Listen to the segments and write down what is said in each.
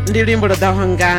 ndi luimbo lwo ḓaho nga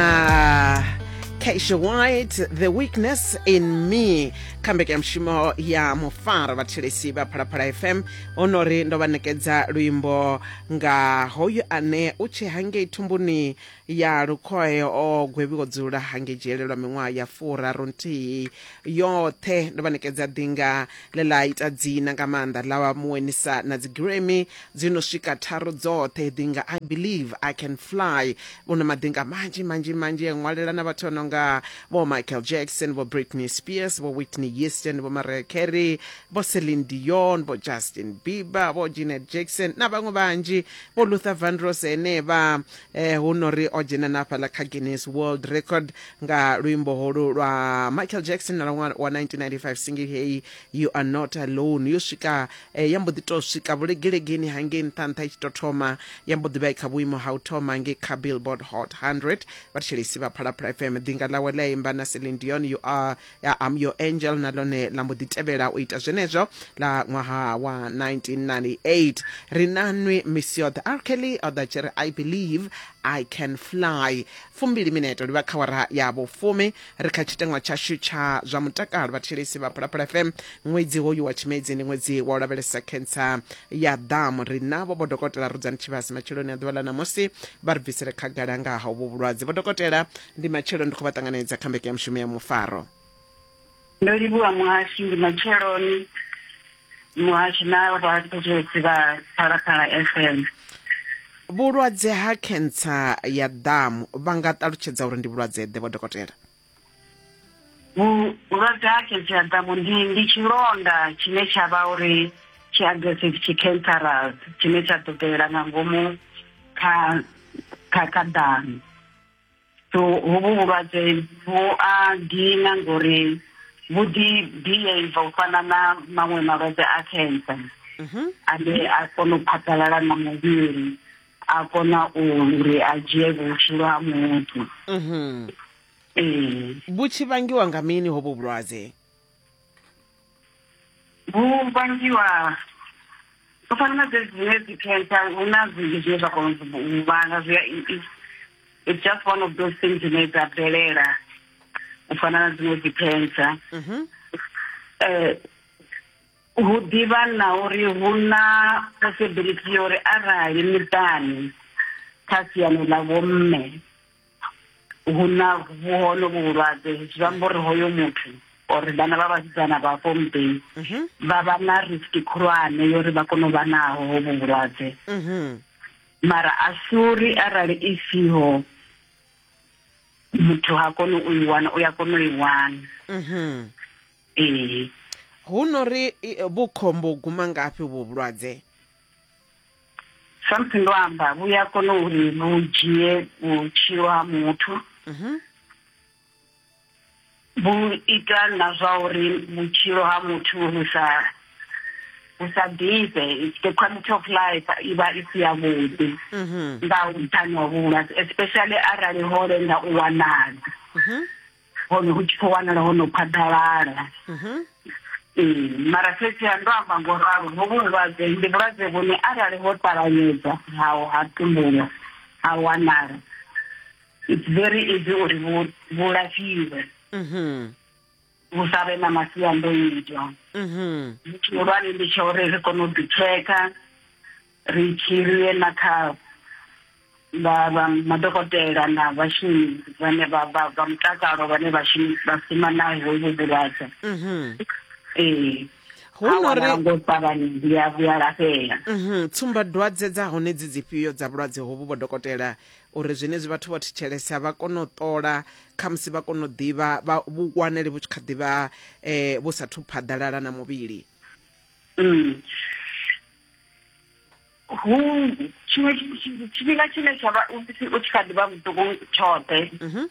Keisha White, The Weakness in Me, kha mbekanyamushumo ya mufaro vhathelesi vha phalaphala fm ono ri ndo vha nekedza luimbo nga hoyu ane u tshe hangei thumbuni ya lukhoe o gwevhiwo dzula hangei dzhele lwa miṅwaha ya furaru nthihi yoṱhe ndo vha nekedza ḓinga ḽe ḽa ita dzina nga maanḓa ḽa wa muwenisa na dzigiremi Dzi no swika tharu dzoṱhe dzi nga I Believe I Can Fly. Vhu na maḓinga manzhi manzhi manzhi a ṅwalela na vhathu vha no nga vho Michael Jackson, vho Britney Spears, vho Whitney Houston, vho Mariah Carey, vho Celine Dion, vho Justin Bieber, vho Janet Jackson na vhaṅwe vhanzhi, vho Luther Vandross henevha. Eh, hu no ri o dzhena na hafhaḽa kha Guinness World Record nga luimbo holu lwa Michael Jackson na lwa wa 1995 single heyi You Are Not Alone yo swika Eh, ya mbo ḓi tou swika vhulegelegeni hangei nṱha nṱha i tshi tou thoma ya mbo ḓi vha i kha vhuimo ha u thoma ngei kha billboard hot 100 vhathetshelesi vha phalaphala fm ḓinga ḽawe ḽa imba na celine dion you are ya am your angel na ḽone ḽa mbo ḓi tevhela u ita zwenezwo ḽa ṅwaha wa 1998 ri nanwi miss yoṱhe r kelly o ḓa tshi ri i believe i can fly fumbili mineto livha kha wara ya vhufumi ri kha tshiteṅwa tshashu tsha zwa mutakalo vhathetshelesi vha phalaphala fm ṅwedzi hoyu wa tshimedzi ndi ṅwedzi wa u lavhelesa khentsa ya ḓamu ri navho vho dokotela rudzani tshivhasi matsheloni a ḓuvha ḽa ṋamusi vha ri bvisele khagala nga ha uvho vhulwadze vho dokotela ndi matshelo ndi khou vha ṱanganedza kha mbeke ya mushumo ya mufaro Ndo livhuwa muhashi ndi matsheloni muhashi na vhathetshelesi vha phalaphala fm vhulwadze ha khentsa ya ḓamu vha nga ṱalutshedza uri ndi vhulwadze ḓe vho dokotela vhulwadze ha khentsa ya ḓamu ndi ndi tshilonda tshine tsha vha uri tshi aggressive tshi cancerous tshine tsha ḓo bvelela nga ngomu kha kha kha ḓamu so hovhu vhulwadze vhu a dina ngori vhu ḓi behave u fana na maṅwe malwadze a cancer mhm. ane a kona u phathalala na muvhili a kona uri a dzhie vhutshilo ha muthu mhm. ee vhu tshi vangiwa nga mini hovhu vhulwadze vhu vhangiwa u fana na dzedzi dzine dzi cancer hu na zwinzhi zwine zwa kona u vhanga zwi a it's just one of those things dzine dza bvelela u fana na dziṅwe dzi cancer mhm. eh, hu ḓivha na uri hu na possibility ya uri arali miṱani kha siani ḽa vhomme hu na vhuhono vhuhulwadze zwi amba uri hoyo muthu or vhana vha vhasidzana vha fo muḓini mhm. vha vha na risk khulwane yo uri vha kone u vha naho ho vhuhulwadze mhm. mara a si uri arali i siho muthu ha koni u i wana u ya kona u i wana mhm. ee hu no ri vhukhombo guma ngafhi vhulwadze samusi ndo amba vhu ya kona uri vhu dzhie vhutshilo ha muthu mhm. vhu ita na zwa uri vhutshilo ha muthu vhu sa vhu sa ḓifhe the quality of life i vha i si yavhuḓi mhm. nga nṱhani wa vhulwadze especially arali ho lenga u wanala mhm. hone hu tshi khou wanala ho no phaḓalala mhm. ee mara fhedzi ha ndo amba ngo ralo hovhu vhulwadze ndi vhulwadze vhune arali ho ṱavhanyedza hao ha tumbulwa ha wanala it's very easy uri vhu lafhiwe mhm. vhu sa vhe na masiandoitwa zwitshihulwane mhm. ndi tsha uri ri kone u ḓitsheka ri tshi luyela kha vha vha madokotela na vhashumi vhane vha vha vha mutakalo vhane vhashumi vha shuma na hovhu vhulwadze mhm. ee hunori ngo ṱavhanya ndi ya vhuya lafhela mhm. tsumba dwadze dza hone dzi dzifhio dza vhulwadze hovhu vho dokotela uri zwenezwi vhathu vho thetshelesa vha kone u ṱola khamusi vha kone u ḓivha vha vhukwanele vhu tshi kha ḓivha um eh, vhu sathu phaḓalala na muvhili mm. hu tshiṅwe tshifhinga tshine tsha vha u tshi kha ḓi vha muṱuku tshoṱhe mhm.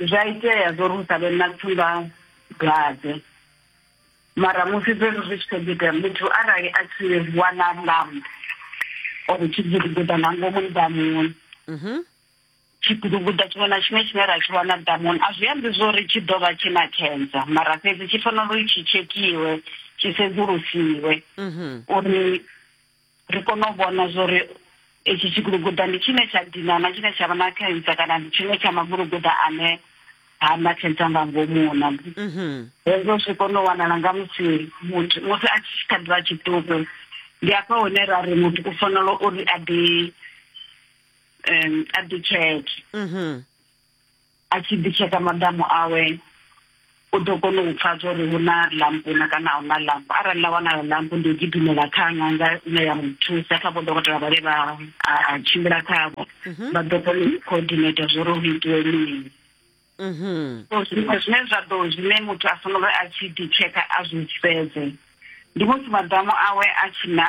zwa itea zwo ri u sa vhe na tsumba dwadze mara musi zwezwo zwi tshi kho ḓi itea muthu arali a tshi wana lamb or tshi gidigida nga ngomu nḓamuni mhm. Tshiduguḓa tshiṅwe na tshiṅwe tshine ra tshi wana ḓamuni a zwi ambi zwo ri tshi ḓo vha tshi na cancer mara fhedzi tshi fanela uri tshi tshekhiwe tshi sedzulusiwe uri ri kone u vhona zwo ri itshi tshiguluguḓa ndi tshine tsha dina na tshine tsha vha na cancer kana ndi tshiṅwe tsha maguluguḓa ane ha na cancer nga ngomu na hezwo zwi kone u wanala nga musi muthu musi a tshi kha ḓivha tshiṱuku ndi afha hune ra ri muthu u fanela uri a ḓi um a ḓitsheke mm-hmm. a tshi ḓitsheka maḓamu awe u ḓo kona u pfa zwa uri hu na lampu na kana a hu na lampu arali ḽa wanayo lampu ndi u gidimela kha ṅanga ine ya muthusa kha vho dokotela vhale vha a tshimbila khavho mhm. vha ḓo kona u coordinata zwa uri hu itiwe mini mhm. so zwiṅwe zwine zwa ḓo zwine muthu a fanela uri a tshi ḓitsheka a zwi sedze ndi musi maḓamu awe a tshi na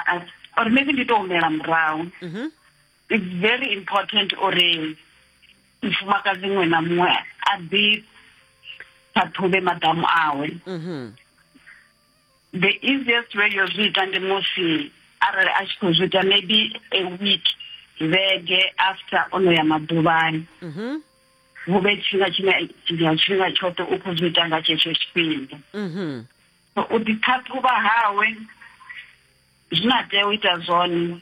or maybe ndi to humela murahu mhm. it's very important uri mufumakadzi muṅwe na muṅwe a ḓi ṱhaṱhuvhe maḓamu awe mm-hmm. the easiest way yo zwi ita ndi musi arali a tshi khou zwi ita maybe a week vhege after ono ya maḓuvhani hu mm-hmm. vhe tshifhinga tshine ya tshifhinga tshoṱhe u khou zwi ita nga tshetsho tshifhinga mm-hmm. so u ḓiṱhaṱhuvha hawe zwine a tea u ita zwone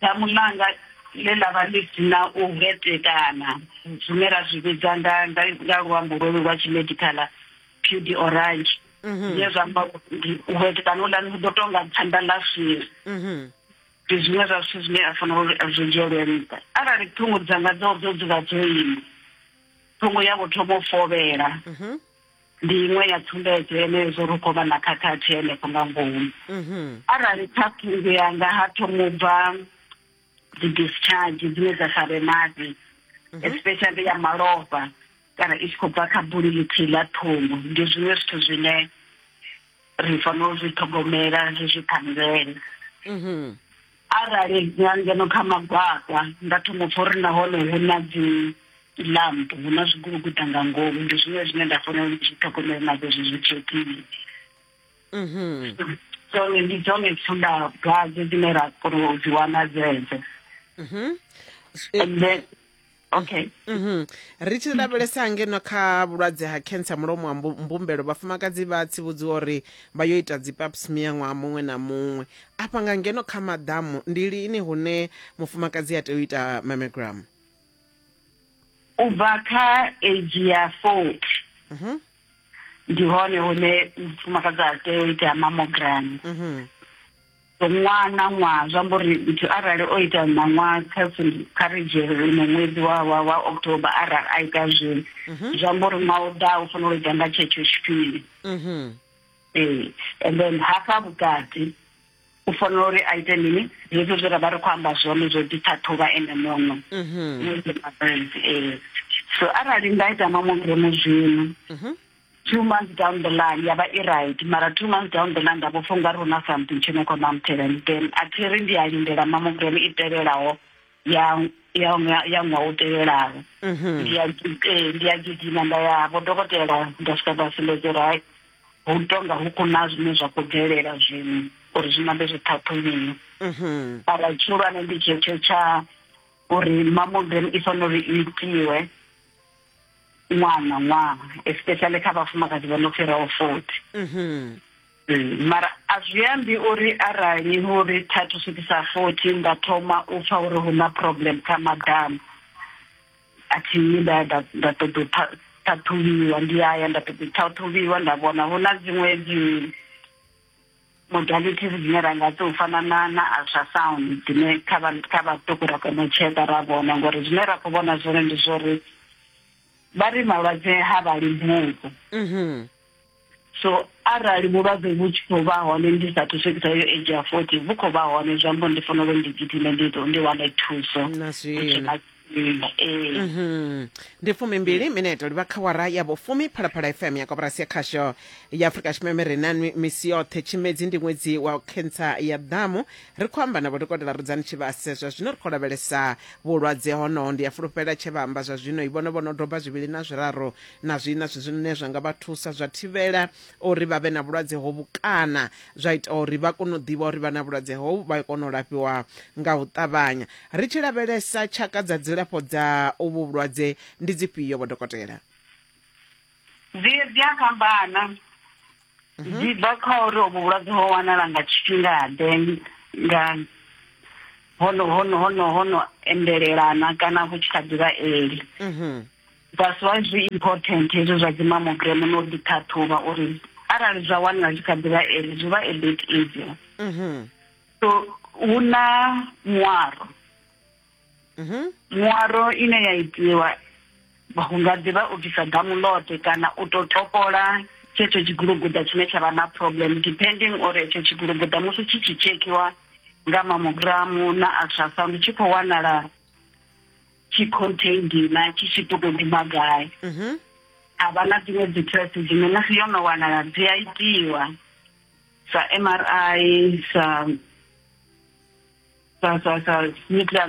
damu ḽanga ḽe ḽa vha ḽi si na u hetekana zwine ra zwi vhidza nga nga luambo lwolu lwa tshimedikhala pudi orange mhm. zwine zwa amba u hetekana uḽani hu ḓo tou nga phanda ḽa swiri mhm. ndi zwiṅwe zwa zwithu zwine a fanela uri a zwi dzhielwe nṱha arali ṱhungu dzanga dzo dzo dzula dzo ima ṱhungu ya vho thoma u fovhela mhm. ndi iṅwe ya tsumbedzo yenezwo ri khou vha na khakhathi henefho nga ngomu mhm. arali kha pfunzo yanga ha thomo u bva dzi-discharge dzine dza sa vhe maḓi mhm. especially ya malofha kana i tshi khou bva kha buli ḽithihi ḽa ṱhungu ndi zwiṅwe zwithu zwine ri fanela u zwi ṱhogomela zwi zwi ṱhanngela mhm. Arali nga ngeno kha magwakwa nda thoma pfa uri nahone hu na dzi lamp hu na zwiguluguda nga ngomu ndi zwine zwine nda fanela uri zwi ṱhogomele na zwezwi zwi tshekile mhm. dzone ndi dzone tsunda dwadze dzine ra kona u dzi wana dzedzo mhm. and then okay Mhm. ri tshi lavhelesa ngeno kha vhulwadze ha cancer mulomo wa mbu- mbumbelo vhafumakadzi vha tsivhudziwa uri vha yo ita dzi pap smear ṅwaha muṅwe na muṅwe afha nga ngeno kha maḓamu ndi lini hune mufumakadzi a tea u ita mammogram u bva kha age ya forty Mhm. ndi hone hune mufumakadzi a tea u itea mamogram mhm. ṅwaha na ṅwaha zwi amba uri muthu arali o ita ṋaṅwaha kha kha ri dzhiele ino ṅwedzi wa wa wa october arali a ita zwino mhm. zwi amba uri ṅwaha u ḓaho u fanela u ita nga tshetsho tshifhinga mhm. ee and then hafha vhukati u fanela uri a ite mini zwezwo zwe ra vha ri khou amba zwone zwo ḓiṱhaṱhuvha ene muno mhm. eh. so arali nda ita mamogiremo zwino mhm. two months down the line ya vha i right mara two months down the line nda vho funga ri huna something tshine khou mamthela then a thi ri ndi a lindela mamogiremo i tevhelaho ya ya ṅwa- ya ṅwaha u tevhelaho Mhm. ndi ya gi- eh, ndi ya gidima nda ya vho dokotela nda swika nda sumbedza uri hai hu tonga hu kuna zwine zwa khou bvelela zwino uri zwi nambe zwi ṱhaṱhuliwe Mhm. ara tshihulwane ndi tshetsho tsha uri mamogram i fanela uri i itiwe ṅwana ṅwaha especially kha vhafumakadzi vho no fhiraho forty Mhm. Mm, mara a zwi ambi uri arali hu ri thathu swikisa forty nda thoma u pfa uri hu na problem kha madamu a thi yi nda nda nda ṱoḓa u tha- ṱhaṱhuvhiwa ndi ya ya nda ṱoḓa u ṱhaṱhuvhiwa nda vhona hu na dziṅwe dzi modalities dzine ra nga tou fana na na ultrasound dzine kha vha kha vhaṱuku ra kona u tsheka ra vhona ngori zwine ra khou vhona zwone ndi zwori vha ri malwadze ha vha limbudzi Mhm. so arali vhulwadze vhu tshi khou vha hone ndi sathu swikisa yo age ya forty vhu khou vha hone zwi amba ndi fanela uri ndi gidime ndi ḓo ndi wane thuso na zwino ee Mhm. ndi fumimbili mineto livha kha wara ya vhufumi phalaphala fm ya koporasi ya khasho ya afurika tshipembe ri na nwi- misi yoṱhe tshimedzi ndi ṅwedzi wa khentsa ya ḓamu ri khou amba na vhodokotela rudzani tshivhase zwa zwino ri khou lavhelesa vhulwadze honoho ndi a fulufhela tshe vha amba zwa zwino i vhono vhono doba zwivhili na zwiraru na zwi na zwi zwine zwa nga vha thusa zwa thivhela uri vha vhe na vhulwadze hovhu kana zwa ita uri vha kone u ḓivha uri vha na vhulwadze hovhu vha kone u lafhiwa nga u ṱavhanya ri tshi lavhelesa tshaka dza dzilafho dza uvhu vhulwadze ndi dzifhio vho dokotela dzi dzi a fhambana mhm. dzi bva kha uri uvhu vhulwadze ho wanala nga tshifhingaḓe nga hono hono hono hono endelelana kana vhu tshi kha ḓivha eli mhm. That's why zwi important hezwo zwa dzi mammogram no ḓi ṱhaṱhuvha uri arali zwa wanala zwi kha ḓivha eli zwi vha a bit easier mm -hmm. so hu na muaro mm -hmm. muaro ine ya itiwa hu nga ḓivha u bvisa damulote kana u to topola tshetsho tshiguluguda tshine tsha vha na problem depending uri etsho tshiguluguda musi tshi tshi tshekhiwa nga mamogramu na ultrasound tshi khou wanala tshi contain dina tshi tshi ṱoḓo ḓivha gai mhm. a vha na dziṅwe dzi test dzine musi yo no wanala dzi a itiwa sa m r i sa sa sa sa nuclear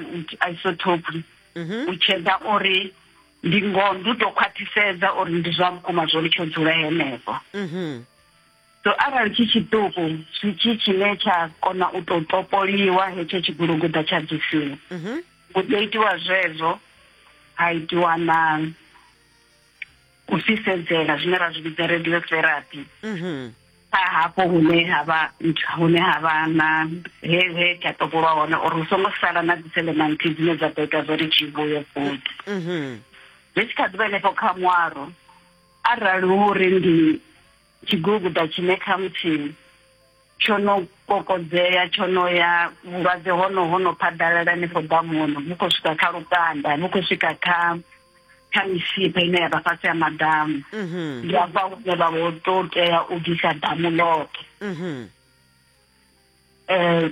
isotope mhm. u tshedza uri ndi ngoho ndi u tou khwaṱhisedza uri ndi zwa vhukuma zwo ri tsho dzula henefho mhm. so arali tshi tshiṱuku tshi tshi tshine tsha kona u tou topoliwa hetsho tshiguluguḓa tsha bvisiwa hu mhm. ḓo itiwa zwezwo ha itiwa na u fhisedzela zwine ra zwi vhidza radio therapy mhm. kha hafho hune ha vha ntsha hune ha vha na he he tsha topolwa hone uri hu songo sala na dziselementi dzine dza ḓo ita zwo ri tshi vhuye futhi mhm. zwi tshi kha ḓi vha henefho kha ṅwaro arali hu uri ndi Tshiguguda tshine khamuthihi tsho no kokodzea tsho no ya vhulwadze hono ho no phaḓalala henefho ḓamuni vhu khou swika kha lukanda vhu khou swika kha kha misipha ine ya vha fhasi ya maḓamu mhm. ndi afha hune vha vho to tea u bvisa ḓamu ḽoṱhe um mhm. eh,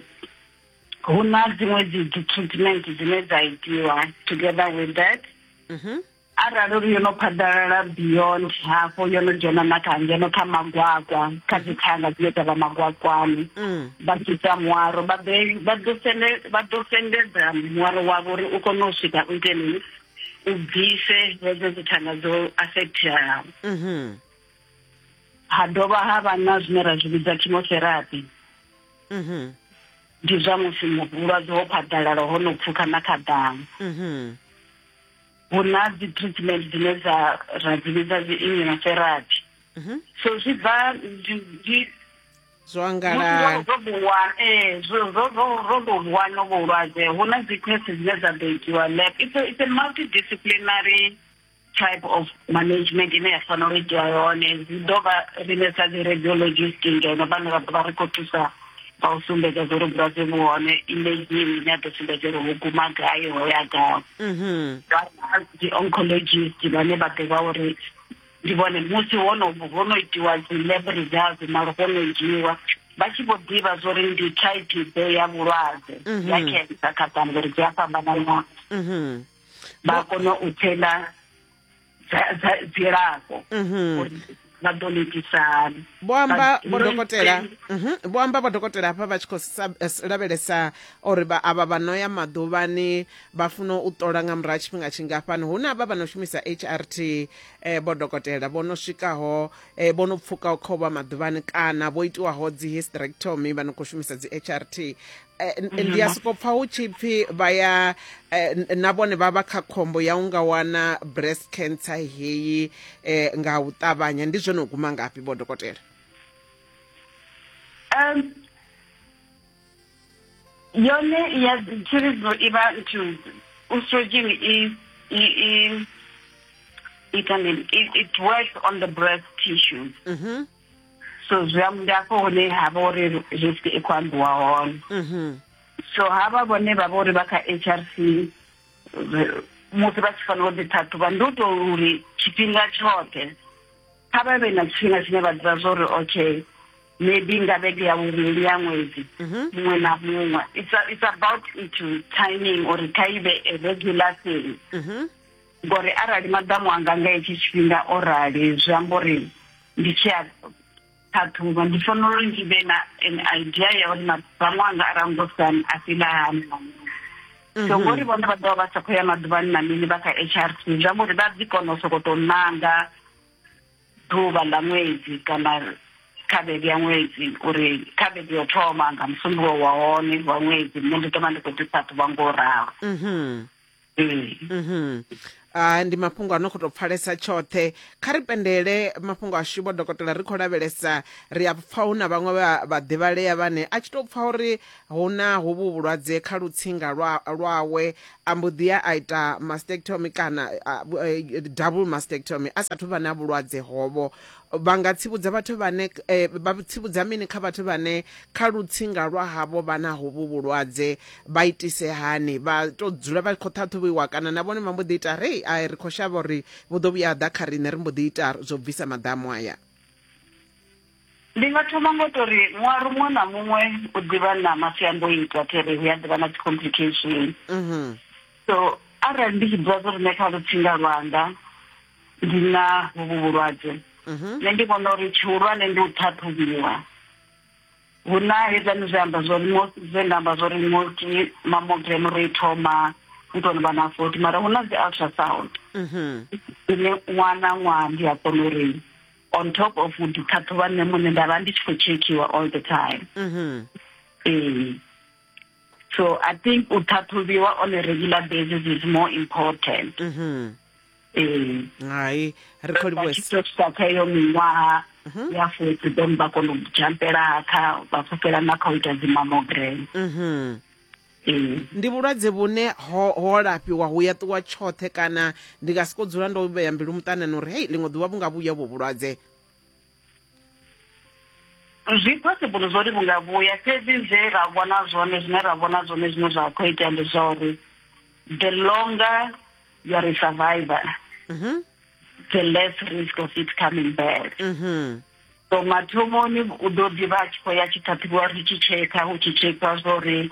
hu na dziṅwe dzi treatment dzine dza itiwa together with that mhm. arali uri yo no phaḓalala beyond hafho yo no dzhena na kha ngeno kha magwakwa kha dzi thanga dzine dza vha magwakwani mm. vha sita muwaro vha ḓo sendedza muwaro wavho uri u kone u swika u iteni u bvise hedzo dzi thanga dzo affecteaho mm-hmm. ha dovha ha vha na zwine ra zwi vhidza chemotherapy mm-hmm. ndi zwa musi vhulwadze ho phaḓalala ho no pfukha na kha ḓamu mm-hmm. hu na dzi treatment dzine dza ra dzi vhidza dzi immunotherapy mhm. so zwi bva zwo angalala zwo buwana eh zwo zwo zwo zwo buwana vhulwadze hu na dzi test dzine dza ḓo itiwa lab it's a, it's a multidisciplinary type of management ine ya fanela u itiwa yone zwi ḓo vha riṋe sa dzi radiologist ngeno vhane vha ḓo vha ri khou thusa kha u sumbedza zwo ri vhulwadze vhu hone imagine ine a ḓo sumbedza uri ho guma gai ho ya gai mhm. dzi-oncologist vhane vha ḓivha uri ndi vhone musi hono ho no itiwa dzi-lab results malo ho no dzhiiwa vha tshi vho ḓivha zwo ri ndi type ḓe ya vhulwadze mhm. ya cancer kha bammbiri dzi a fhambanana mhm. vha kona u thela dzilafho mhm. uri vha ḓo netisa hani vho amba vhodokotela mhm. vho amba vhodokotela hafha vha tshi khou eh, lavhelesa uri avha vha no ya maḓuvhani vha funa u ṱola nga murahu tshifhinga tshingafhani hu na vha vha no shumisa h r t um eh, vhodokotela vho no swikaho um vho no pfukaho kha u vha maḓuvhani kana vho itiwaho dzi hysterectomy vha no khou shumisa dzi h r t ndi ya soko pfa hu tshi pfi vha ya na vhone vha vha kha khombo ya u nga wana breast cancer heyi um nga u ṱavhanya ndi zwone u guma ngafhi vho dokotela um yone ya tshiridzo i vha nthu estrogen i i i ita mini it works on the breast tissues mm -hmm. so zwi am- ndi afho hune ha vha uri risk i khou ambiwa hone Mhm. so havha vhone vha vha uri vha kha h r c re- musi vha tshi fanela u ḓiṱhaṱhuvha ndi u tou uri tshifhinga tshoṱhe kha vha vhe na tshifhinga tshine vha ḓivha zwa uri okay maybe nga vhege ya vhuvhili ya ṅwedzi Mhm. muṅwe na muṅwe it's, a- it's about into timing uri kha i vhe a regular thing Mhm. ngori arali maḓamu anga nga hetshi tshifhinga o rali zwi amba uri ndi tshi a ṱhaṱhuvha ndi fanela uri ndi vhe na an idea ya uri maḓamu anga a rangosani a fhila hani na mini so mhm. ngori vhone vha ḓovha vha sa khou ya maḓuvhani na mini vha kha h r t zwi amba uri vha ḓi kona u sokou tou nanga ḓuvha ḽa ṅwedzi kana kha vhege ya ṅwedzi uri kha vhege yo thoma nga musumbulowo wa hone wa ṅwedzi nṋe ndi ḓo vha ndi khou ḓi ṱhaṱhuvha ngo u ralo mhm. Mm. Mhm. Ah, ndi mafhungo a no khou tou pfalesa tshoṱhe kha ri pendele mafhungo ashu vho dokotela ri khou lavhelesa ri a pfa hu na vhaṅwe vha- vhaḓivhalea vhane a tshi tou pfa uri hu na hovhu vhulwadze kha lutsinga lwa- lwawe a mbo ḓi ya a ita mastectomy kana ah, bu- eh, double mastectomy a sathu vha na vhulwadze hovho vha nga tsivhudza vhathu vhane eh, vha tsivhudza mini kha vhathu vhane kha lutsinga lwa havho vha na hovhu vhulwadze vha itise hani vha to dzula vha khou ṱhaṱhuvhiwa kana na vhone vha mbo ḓi ita rei a ri khou shavha uri vhu ḓo vhuya ḓa kha riṋe ri mbo ḓi ita zwo bvisa maḓamu aya ndi nga thoma ngo to ri ṅwaru muṅwe na muṅwe u ḓivha na masiandoitwa tere hu ya ḓivha na dzi-complication so arali ndi tshi ḓivha zwo ri nṋe kha lutsinga lwanga ndi na vhuvhu vhulwadze mhm. nṋe ndi vhona uri tshihulwane ndi u ṱhaṱhuvhiwa hu na hezani zwi amba zwori zwe nda amba zwori multi mamogram ri thoma u tou vha na forty mara hu na dzi ultrasound mhm. ine ṅwana ṅwaha ndi a kona uri on top of u ḓiṱhaṱhuvha nṋe muṋe nda vha ndi tshi khou tshekhiwa all the time mhm. ee so i think u ṱhaṱhuvhiwa on a regular basis is more important mm -hmm. ee hai ri khou livhuwesa kha iyo miṅwaha mhm. ya futhi then vha kona u jampela kha vha pfukela na kha u ita dzimamogrene mhm. ndi vhulwadze vhune ho ho lafhiwa hu ya ṱuwa tshoṱhe kana ndi nga siko dzula ndo vhea mbilu muṱanani uri hei ḽiṅwe ḓuvha vhu nga vhuya vho vhulwadze zwi possible zwo ri vhu nga vhuya fhedzi zwe ra vhona zwone zwine ra vhona zwone zwine zwa khou itea ndi zwa uri the longer you are a survivor mm -hmm. the less risk of it coming back mm -hmm. so mathomoni u ḓo ḓivha a tshi khou ya tshi ṱhaṱhuvhiwa ri tshi tshekha hu tshi tshekha zwa uri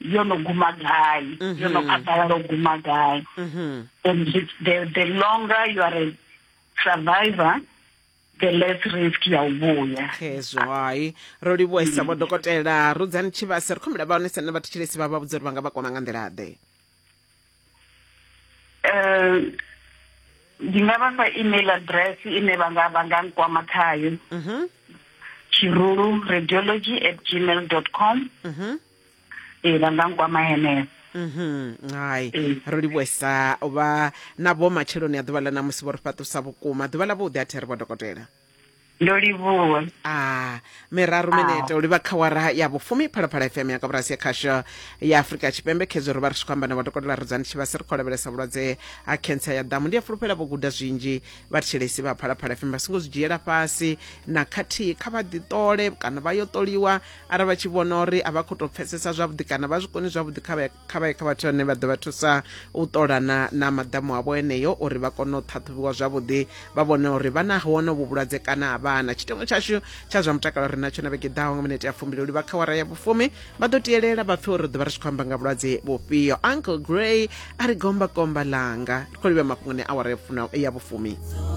yo no guma gai, mm -hmm. yo no mm-hmm. katara lo guma gai. Mm -hmm. And the, the longer you are a survivor, the less risk ya u vhuya hezwo hai ro livhuwa isa vho dokotela rudzani tshivhase ri khombela vha hone sene vhathu tshilesi vha vha vhudza uri vha nga vha kwama nga nḓila ḓe eh ndi nga vha fha email address ine vha nga vha nga nkwama khayo mhm tshirulu radiology at gmail dot com mhm ee vha nga nkwama henefho mhm hai Ee. ro livhuesa u vha na vho matsheloni a ḓuvha ḽa ṋamusi vho ri fhaṱusa vhukuma ḓuvha ḽa vhuḓi a thi ri vho dokotela ndo livhuwa a miraru minete u livha kha wara ya vhufumi phalaphala fm ya kaburasi ya khasho ya afurika tshipembe khedzo ro vha ri tshi khou amba na vhadokotela rudzani tshivhasi ri khou lavhelesa vhulwadze ha khentsa ya ḓamu ndi a fulufhela vho guda zwinzhi vhathetshelesi vha phalaphala fm vha songo zwi dzhiela fhasi na khathihi kha vha ḓiṱole kana vha yo ṱoliwa arali vha tshi vhona uri a vha khou tou pfesesa zwavhuḓi kana vha zwi koni zwavhuḓi kha vha ye kha vha ye kha vhathu vhane vha ḓo vha thusa u ṱolana na maḓamu avho eneyo uri vha kone u ṱhaṱhuvhiwa zwavhuḓi vha vhone uri vha na hone vhu vhulwadze kana a vhana tshitengo tshashu tsha zwa mutakalo ri natsho na vhege ḓaho nga minete ya fumbili uli vha kha wara ya vhufumi vha ḓo tielela vha pfe uri ḓo vha ri tshi khou amba nga vhulwadze vhufhio uncle grey a ri gomba komba langa ri khou livha mafhungoni awara ya vhufumi